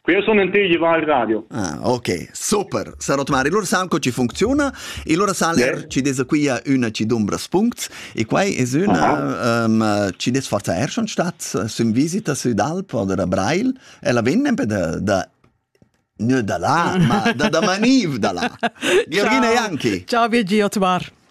Qui sono in te il radio. Ah, ok, super. Sarot mari, lur san co ci funziona e lura san ler yeah. ci desa qui una ci dumbra spunct e quai es una um, ci des forza er schon stat sün visita sü d'Alp oder a Brail e la vennen per da, da Ne da là, ma da, da Maniv da là. Georgina Janki. Ciao Virgi, Otmar.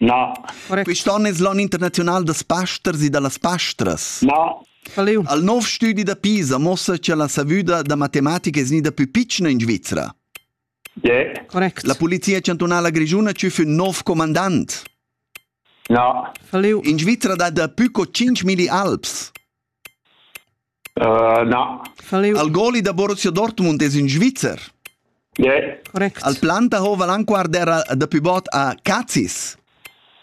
Na. Quest'onn es l'on internaziunal da pasters e da las pastras. Na. Al nov stüdi da Pisa muossa cha la savüda da matematica es gnida pü pitschna in Svizra. Yeah. Correct. La Polizia chantunala grischuna tschüf ün nov comandant. Na. In Svizra dat dapü co 5.000 alps. Na. Al goli da Borussia Dortmund es ün Svizzer. Yeah. Correct. Al Plantahofer anquard era dapi bot a Cazis.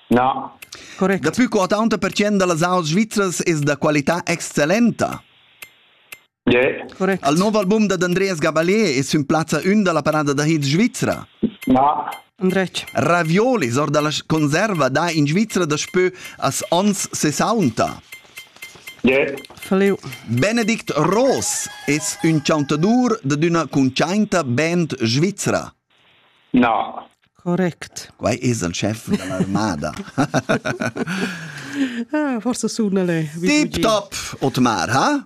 No. Correct. Dapi che 80% da las aus svizras es da qualità excellenta. Yeah. Correct. Al nuovo album da Andreas Gabalier es ün plazza ün da la parada da hits svizra. No. Andretg. Raviolis or dalla conserva da in Svizra daspö as ons 60. Yeah. Faleu. Benedict Ross es ün chantadur dad üna cuntschainta band svizra. No. Correct. Quai es il chef dall'armada. ah, forse suna le. Tip top, Otmar, ha?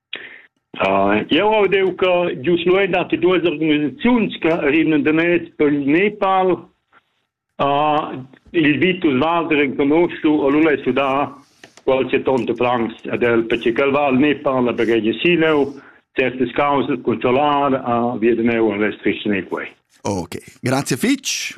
Jeu hau deu che gius lu ein dati duas organisaziuns che rimnan da mez per il Nepal. Il Vitus Walder enconoschu ha lu sudà qualche tonta plangs ad el perche ch'el va al Nepal a baghegiar sileu, certas causas cun solar, via da neu en restriziun e quei. Okay, grazie fitg.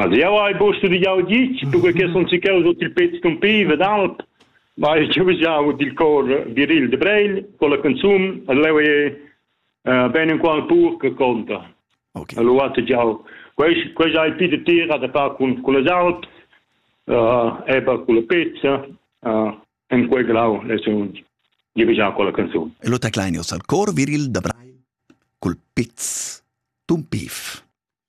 Also jau hai busta di jau ditg, perquai che sun si cheu sut il pez scumpiv ed alp, ma jau ves jau dil cor viril de Breil, con la consum, leu è ben in qual pur che conta. Okay. Allora hat jau quei quei ja il pite tira da far con con les alps, äh eba con la pezza, äh en quei grau le sun. Io ves ja con la canzone. E lo taclainios al cor viril da Breil col pez tumpiv.